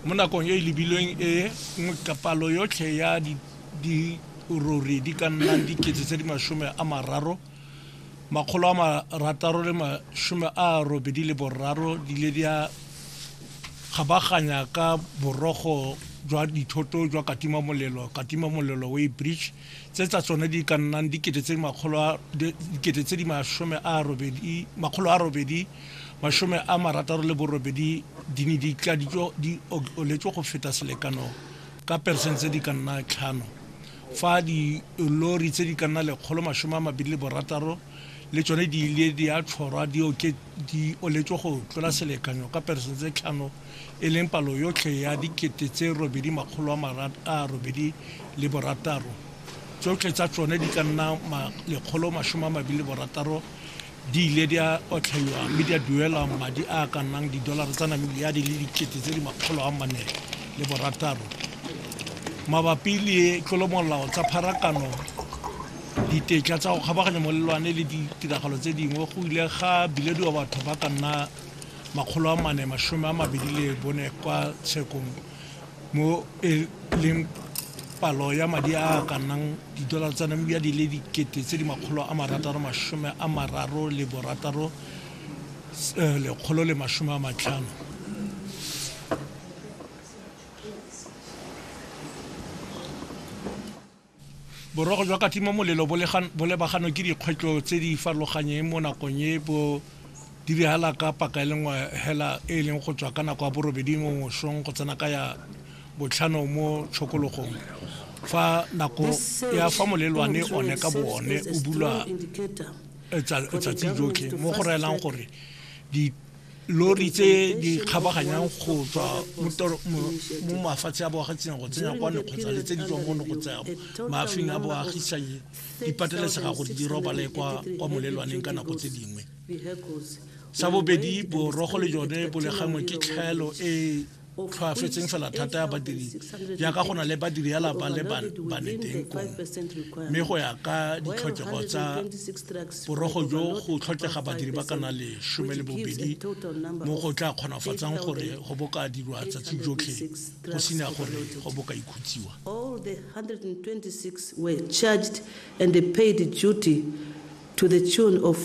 mo nakong e e lebilweng e nngwe ka palo yotlhe ya dirori di ka nnang dikete tse di masome a mararo makgolo a marataro le masome a robedi le boraro di ile di a kgabaganya ka borogo jwa dithoto jwa katima molelo katima molelo weighbridge tse tsa tsone di ka nnang dikete tse di masome a robedi masome a marataro le borobedi di ne di tladitswe di oletswe go feta selekano ka peresente tse di ka nna tlhano fa dilori tse di ka nna lekgolo masome a mabedi le borataro le tsone di ile di a tshwarwa di oletswe go tlola selekanyo ka peresente tse tlhano e leng palo yotlhe ya dikete tse robedi makgolo a marad a robedi le borataro, tsotlhe tsa tsone di ka nna ma lekgolo masome a mabili le borataro, di ile di a otlhaiwa mme di a duelwa madi a a ka nnang didolara tsa Namibia di le dikete tse di makgolo a mane le borataro. Mabapi le tlolomolao tsa pharakano, ditetla tsa go kgabaganya molelwane le ditiragalo tse dingwe, go ile ga bilediwa batho ba ka nna 424 kwa tshekong mo e leng palo ya madi a a ka nnang didolara tsa Namibia di le dikete tse di makgolo a marataro masome a mararo le borataro lekgolo le masome a matlhano. Boroko jwa katimamolelo bo lebaganwe ke dikgwetlho tse di farologanyeng mo nakong e bo diragala ka paka e le nngwe hela e e leng go tswa ka nako ya borobedi mo mosong go tsena ka ya botlhano mo tshokologong fa nako ya fa molelwane one ka boone o bulwa letsatsi jotlhe mo go raelang gore lori tse di kgabaganyang go tswa mo mafatshe a boagatseng go tsenya kwa ne kgotsa le tse di tswang mo ne go tsaya maafing a boagisanyi di pateletsega gore di robale kwa molelwaneng ka nako tse dingwe sa bobedi borogo le jone bo le gangwe ke tlhaelo e tlhoafetseng fela thata ya badiri jaaka go na le badiri ya lapa le baneteng kong mme go ya ka ditlhokego tsa borogo jo go tlhokega badiri ba kana le some le bobedi mo go tla kgonafatsang gore go boka dirwa tsatsi jotlhe go sena gore go boka ikhutsiwa All the 126 were charged and paid duty to the tune of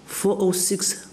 406